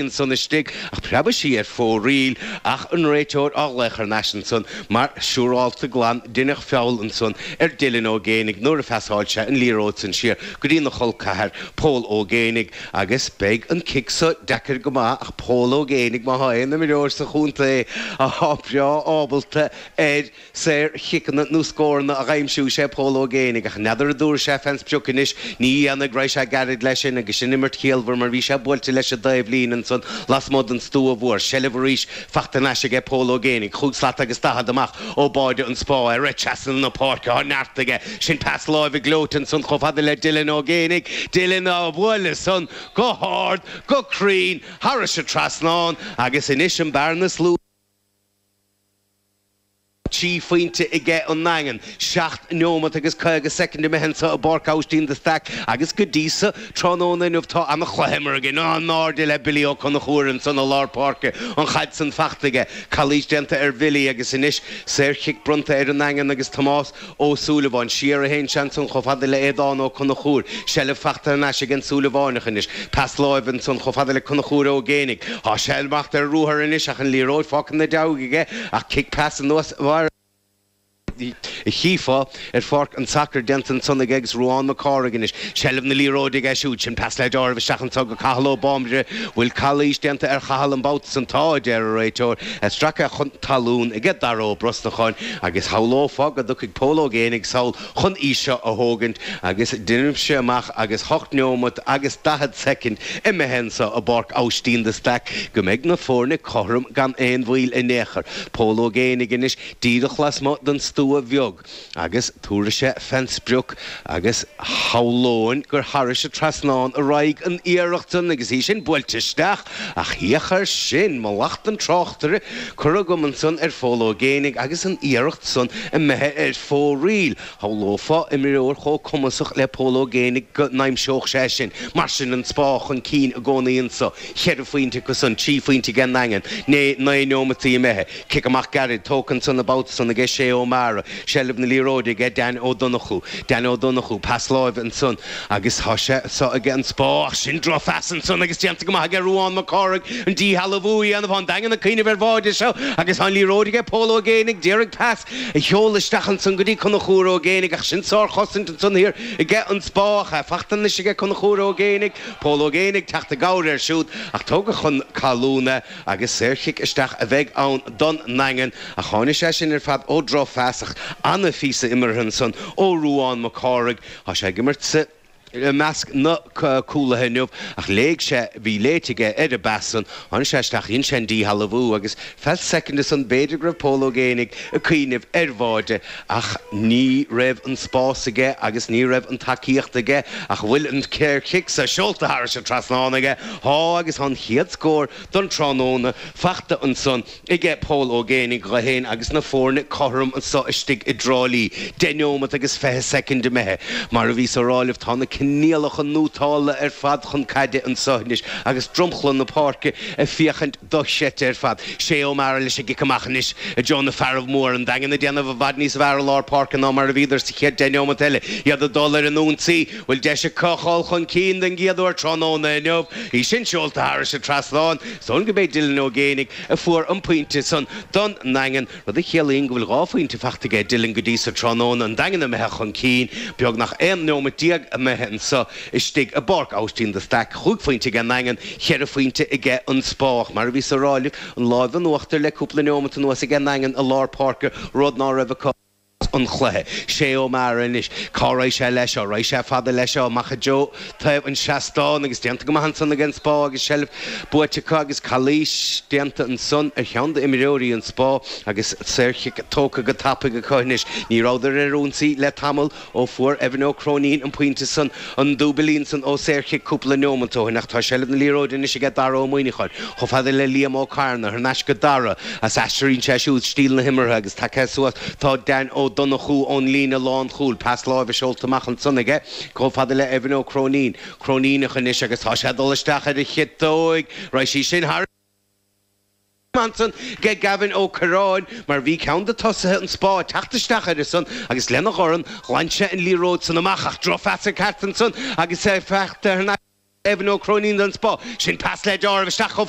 ansan istigh, ach preabadh sí ar fóraoil, ach an réiteoir á ghlaoch thar n-ais ansan, mar siúrálta glan, deineadh feall ansan ar Dylan Ó Géinigh nuair a phasáil sé an liathróid san siar go dtína chol ceathar, Pól Ó Géinigh, agus beidh an cic so deacair go maith, ach Pól Ó Géinigh, má thá aon imreoir sa chontae athá breá ábalta ar, saor chiceanna nó scóranna a dh'aimsiú is é Pól Ó Géinigh, ach n'fheadar an dtabharfaidh sé fén sprioc anois, ní dhéanfaidh, raghaidh sé gairid le sin agus sin imirt chiallmhar mar bhí sé buailte leis an dtaobhlíne ansan lasmuigh den stua mhór, seilbh arís fachta thar n-ais aige Pól Ó Géinigh, chúig slat agus daichead amach ó bháide an Spá, é ag rith trasna na páirce, thá neart aige, sin pas láimhe gleoite ansan chomh fada le Dylan Ó Géinigh, Dylan á bhualadh san go hard, go cruinn, tharais an trasnán agus anois an bhearna is lú. Trí phointe aige an nDaingean, seacht neomat agus caoga soicind imithe anseo i bPáirc Aibhistín de Staic agus go dtí so, tráthnóna inniu, tá ana-chluiche imeartha againn. In airde le Billy Ó Conchúir ansan i lár páirce, an chaid san fachta aige, calaois déanta ar Bhilly agus anois saor chic bronnta ar an nDaingean agus Tomás Ó Súilleabháin, siar a théann sé ansan chomh fada le Aodhán Ó Conchúir, seilbh fachta thar n-ais ag an Súilleabháinach anois, Pas láimhe ansan chomh fada le Conchúr Ó Géinigh, tá sé ag imeacht ar ruathar anois ach an liathróid fágtha ina dhiaidh aige, ach cic pas ar nós mar a chífeá ar pháirc an tsacair déanta ansan aige agus Ruán Mac Cárthaigh anois, seilbh na liathróide aige siúd, sin pas le dealramh isteach anso go Cathal Ó Bámbaire, bhfuil calaois déanta ar Chathal an babhta san? Tá, a deir an réiteoir, é stractha chun talún aige Dara Ó Brosnacháin, Agus shamhlófá go dtiocfaidh Pól Ó Géinigh sall chun é seo a thógaint agus deinimse amach agus ocht neomat agus daichead soicind imithe anso i bPáirc Aibhistín de Staic go mbeidh na foirne cothrom gan aon mhoill in aon chor. Pól Ó Géinigh anois díreach lasmuigh den stua bheag agus tabharfaidh sé fén sprioc agus shamhlóinn gur thairis a' trasnán a raghaidh an iarracht san agus í sin buailte isteach Ach féach air sin, mallacht an tráchtaire curtha agam ansan ar Phól Ó Géinigh agus an iarracht san imithe ar fóraoil, shamhlófá imreoir chomh cumasach le Pól Ó Géinigh go n-aimseodh sé sin mar sin an Spá chun cinn i gcónaí anso, cheithre phointe acu san, trí phointe aige an nDaingean, né naoi neomataí imithe. Cic amach gairid, tógtha ansan an babhta san ag Shay Ó Meára, seilbh na liathróide aige Danny Ó Donnchú, Danny Ó Donnchú, pas láimhe ansan agus tá sé seo aige an Spá ach sin droch phas ansan agus déanta go maith aige Ruán Mac Cárthaigh an díshealbhú a dhéanamh, tá an Daingean ag cuimhneamh ar bháide seo agus tá an liathróid aige Pól Ó Géinigh, a d'iarraidh pas a sheoladh isteach ansan go dtí Conchúr Ó Géinigh ach sin sár chosaint ansan thiar aige an Spá ach é fachta anois aige Conchúr Ó Géinigh, Pól Ó Géinigh ag teacht i gcabhair air siúd ach tógadh chun talún é. Agus saorchic isteach a bheidh ann don nDaingean, ach tháinig sé sin ar fad ó drochphas ach. An-phíosa imeartha ansan ó Ruán Mac Cárthaigh. Tá sé ag imirt i measc na cúlaithe inniu, ach léig sé, bhí léite aige ar an bpas san, tháinig sé isteach, dhein sé an díshealbhú agus feadh soicind ansan b'fhéidir go raibh Pól Ó Géibheannaigh ag cuimhneamh ar bháide Ach ní raibh an spás aige agus ní raibh an tacaíocht aige. Ach bhfuil an saorchic so seolta thairis an trasnán aige. Tá, agus thá an chéad scór don tráthnóna fachta ansan age Pól Ó Géibheannaigh dho fhéin agus na fóirne cothrom anso istigh i dTrá Lí, deich neomat agus fiche soicind imithe. Mar a bhíos á rá libh, tá na coinníollacha nótálta ar fad chun caide anso anois agus dromchla na páirce ag féachaint. dochreidte ar fad. Shay O'Meara leis an gcic amach anois i dtreo na fearaibh móra. An Daingean ag déanamh i bhfad níos fearr i lár páirce ná mar a bhíodar sa chéad deich neomat eile, iad ag dul ar an ionsaí. Bhfuil deis acu dhul chun cinn den gcéad uair tráthnóna inniu? Í sin seolta thairis an trasnán. Is dóigh gurb é Dylan Ó Géibheannaigh a fuair an pointe san don nDaingean. rud a chiallaíonn go bhfuil dhá phointe fachta aige Dylan go dtí so tráthnóna, an Daingean imithe chun cinn beagnach 11 nóimeat imithe anso istigh i bPáirc Aibhistín de Staic, chúig phointe ag an nDaingean, cheithre phointe aige an Spá, ach mar a bhíos á rá libh, an láimh in uachtar le cúpla neomat anuas ag an nDaingean i lár páirce, rud ná raibh acu. an chluiche. Shay O'Meara anois. Cá raghaidh sé leis seo? Raghaidh sé fada leis seo, amach i dtreo taobh an seastáin agus déanta go maith ansan aige an spá agus seilbh buaite acu agus calaois déanta ansan ar cheann d'imreoirí an spá agus saorchic tógtha go tapaidh acu anois. Ní rabhadar ar ionsaí le tamall ó fuair Evan Ó Cróinín an pointe san An Dúibílín san ó saorchic cúpla neomant ó shin ach tá seilbh na liathróide anois aige Dara Ó Muimhneacháin chomh fada le Liam Ó Cearnaigh thar n-ais go Dara is aistríonn sé siúd stíl na himeartha agus tagtha suas tá Dan Ó Donnchú ón líne lánchúil pas láimhe seolta amach ansan aige chomh fada le Evan Ó Cróinín Cróiníneach anois agus tá sé ag dul isteach ar a chiotóig raghaidh sí sin thar ansan age Gavin Ó Corráin mar bhí ceann de tosaithe an spá ag teacht isteach air ansan agus lena dhorn ghlan sé an liathróid san amach ach drochphas ag teacht ansan agus í fachta ag Evan Ó Cróinín den spá sin pas le talamh isteach chomh